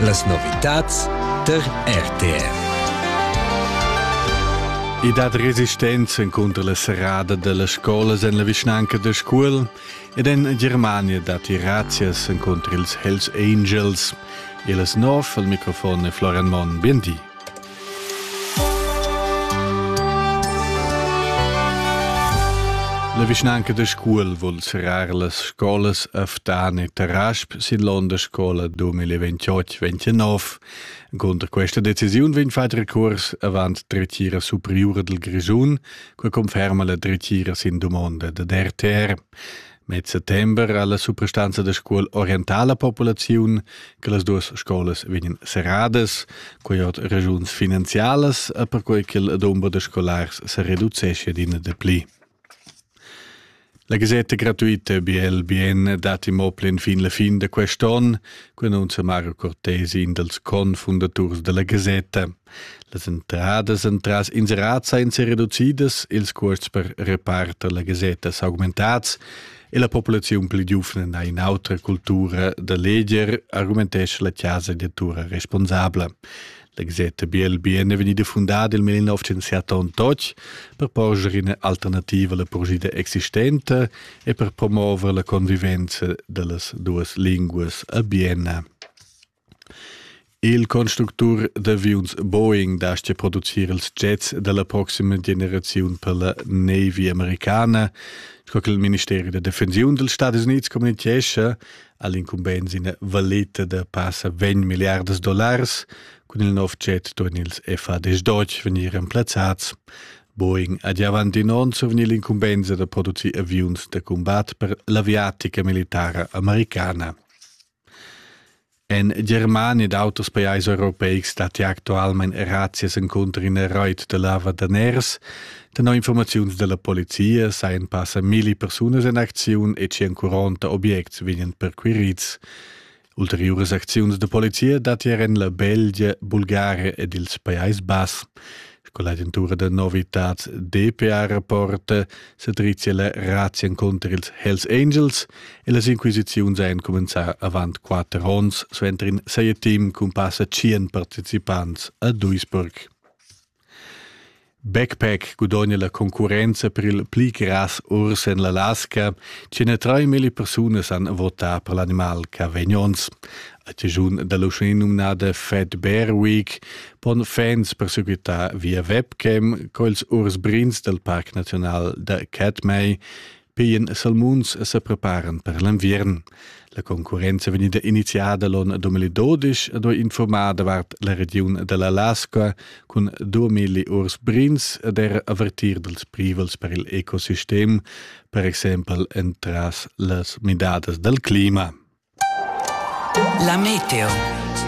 Las novitads tar RTR. I dat resistenza contro la serrada delle scuole en la vischnanca de Scuol ed en Germania dat grazias contro ils Hells Angels. E las nov al microfon è Florian Monn. Bien di. La vischnanca da Scuol vul serrar las scolas Aftan e Tarasp sin l'onda scola 2028-29. Cunter questa decisiun vegn fatg recurs avant dretgira superiura del Grischun, che conferma la dretgira sin domanda da DRTR. Med settember ha la suprastanza da scuol orientà la populaziun che las duas scolas vegnan serradas, quai ord regiuns finanzialas e perquai che il dumber da scolars se reduceschia d'ina de pli. La gasetta gratuita BLBN dati mo plen fin la fin da quest'on, quai annunzia Mario Cortesi, in dels confundaturs della gasetta. Las entradas entras inserats ein sereducidas, ils cuosts per reparter la gasetta s'augmentats e la populaziun pli giuvna ha in'autra cultura da leger, argumentescha la casa editura responsabla. La gasetta Biel Bien è vegnida fundada il 1978 per porscher ina alternativa alla purgida existente e per promuovere la convivenza dellas duas linguas a Bienna. Il constructur d'aviuns Boeing dastgia producir ils jets da la proxima generaziun per la Navy americana. Sco che il ministeri da defensiun dals Stadis Unids communitgescha, ha l'incumbensa ina valeta da passa 20 milliardas dollars. Cun il nov jet duan ils FAD-Deutsch vegnir remplazzads. Boeing ha gia avanti in onn survegni l'incumbensa da producir aviuns da combat per l'aviatica militara americana. En Germania ed auters pajais europeics datti actualmain razzias encunter ina rait da lava daners. Tenor informaziuns da la polizia sajan passa milli persunas en acziun e 140 objects vegnan perquirids. Ulteriuras acziuns da polizia datti er en la Belgia, Bulgaria ed ils Pajais Bass. Sco l'agentura da novitads DPA rapporta, Sedrizia la razia contr ils Hells Angels e las inquisiziuns ein cumenzar avant quater ons suenter in seie team cun passa tschien participants a Duisburg. Backpack gudogna la concurrenza per il pli gras urs en l'Alaska, 103.000 persunas han votà per l'animal Cavegnons. A tischun da l'uschè numnada Fed Bear Week pon fans persequitar via webcam quels urs brins dal Parc Naziunal da Catmay pien salmuns se preparan per l'enviern. La concurrenza venida iniziada l'on 2012 ha informada davart la regiun dell'Alaska cun 2000 urs brins ed er avertir dels privels per il ecosistem, per exempel entras las midadas del clima. La meteo.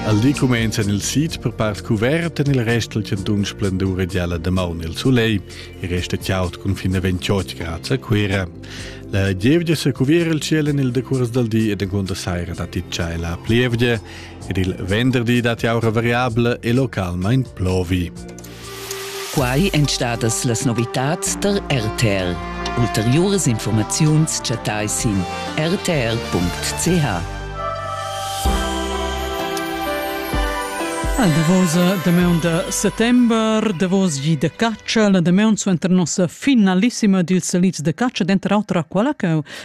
Al di cumenzan il sid per part cuvert en il rest dal chantun splendur e gialla damaun il sulegl e resta chaud cun fin a 28 grads a Cuira. La gievgia sa cuviera il ciel en il decurs dal di ed encunter saira datti tschella plievgia ed il venderdi datti aura variabla e localmain plovi. Quai èn stadas las novitads tar RTR. Ulteriuras informaziuns chattai sin rtr.ch. La davosa damaun da settember, davos gi de caccia, la damaun suenter nossa finalissima dils salids de caccia, denter auter quella che